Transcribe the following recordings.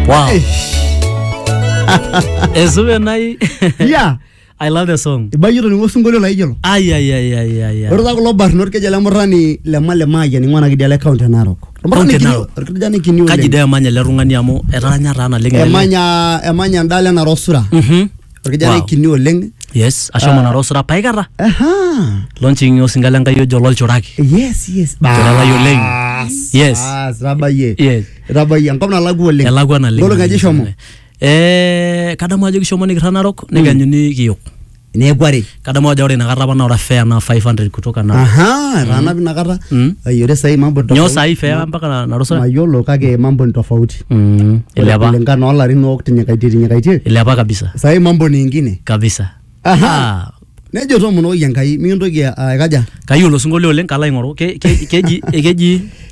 Wow. Esume nai. ya I love the song. ibayie toning'o osinkolio laijo ilo Ai ai ai ai ai. ai. ore taa kulo barnot kejo ele murrani le male maayian ing'ua ena kidia le kaunti e narok Ormurrani Kaunti e kini- Narok. orkijani kini Kaji oleng dee emanya ele tung'ani amu etaanya taa naleng ele. emanya emanya endala enara osura Mhm. orkijanai Wow. kini oleng yes ashomo nara osura paikata Aha. lonching'i osinga le nkai ojo lolchuraki yes yes Tolalayu oleng. Bas, Yes. bas, itabayie Yes. itabayie enkop nalakua oleng elakwa naleng ngolong aja ishomo eh kadamu ajo kishomo nikirra narok nikianyuni kiyok neeku are kadamu ajo ore inakata apa naa ore fare naa 500 kutoka na aha etaanapi inakata Mm. Ai, ore sahii mambo ni nyoo tofauti. sahi fare mpaka na- narusa mayiolo kake mambo ni tofauti Mm, Ore ilepa kulingana olarin otinyikaitie tinyikaitie ilepa kabisa sahii mambo ni ingine kabisa aha Ah, nejo tomonoki enkai mikintoki aikaja kayiolo osinkolio oleng kalo aing'oru Ke- ke- keji keji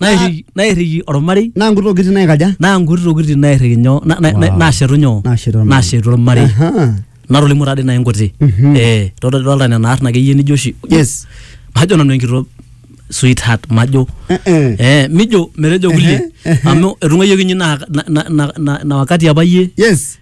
nairriki nairriki ormarei naa nkuti tokitin naikaja naa nkuti tokitin nairriki nyoo na- na- na- Wow. naashetu nyoo Naashetu ormarei. naashetu ormarei Aha. natolimu taadii nai nkuti Mhm. eh todolta nena arn akeyie nijo oshi yes majo nanu enkito sweetheart majo Eh, eh. eh mijo metejo kulie Ehe, ehe. amu etung'uayioki inye na, na, na, na, na, na wakati apa iyie yes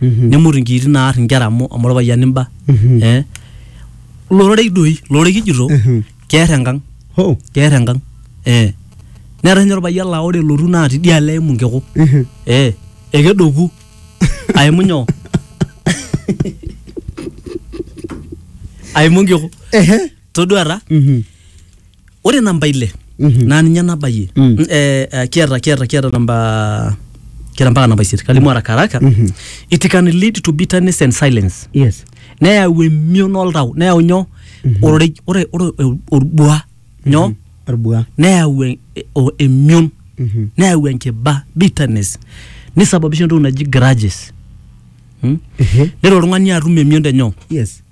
nemut inkiitin naar inkera amu amu orpayian imba eh lororei doi lororei kijito keer enkang Ho. keer enkang eh neetae ninye orpayian laa ore elotu naa tidialo eimu nkiku eh ekedoku aimu nyoo aimu nkiku Ehe. todua ta Mhm. ore namba ile Mhm. naa ninye nabayie Mm. N- eh, eh, kiata kiata kiata namba kiata mpaka namba isiet kalimu haraka haraka Mhm. it can lead to bitterness and silence Yes. neyau emion oltau neyau nyoo ororei ore ore o- orbua nyoo Orbua. neyau e- e- o- emion Mhm. neyau enkiba bitterness nisababisha entoki naji grudges hmm? Ehe. nelo oltung'ani atum emion te nyoo Yes.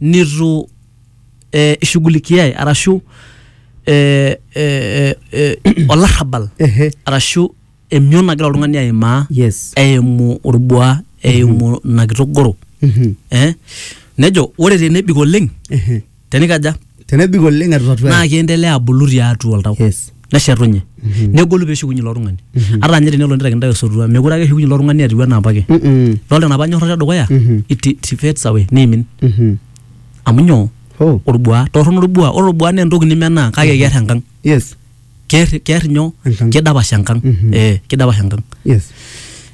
nitu eh, ishughulikiae arashu eh, eh, eh, eh, olarrabal Ehe. arashu emion nagira oltung'ani aimaa Yes. eimu orbuaa eimu ina kitogoro Mhm. eh? nejo ore tenebik oleng Ehe. tenikaja tenebik oleng etu tatua naa kiendelea abulu tiatua oltau yes neshetunye negolu peeshukunye ilo tung'ani ata ninye tenelo nitaikini intae osotua mekure ake eshukunye ilo tung'ani etiu enaa apake Mm-mm. dolta enapa nyorrata edukuya Mhm. it it fades away niimin Mhm. amu nyoo oh orbuaa torrono orbuaa ore orbuaa naa entoki nimenaa kake keer enkang yes keer keer nyoo Enkang. kidapash enkang Mhm. eh kidapash enkang yes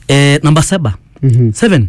eh namba saba Mhm. seven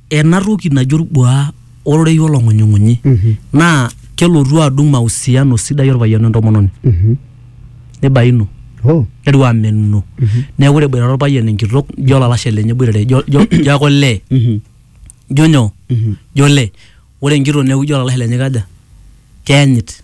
ena toki naji orbuaa ororei olong'unyung'unyi naa kelotu adung mausiano sidai orpayian wentomononi nibainu Oh. netiu amenuno neeku ore eboitare orpayian enkitok ijo olalashe lenye eboitare ijo ijo ijo ake olee ijo nyoo ijo olee ore enkitok neeku ijo olalashe lenye kaja keyanyit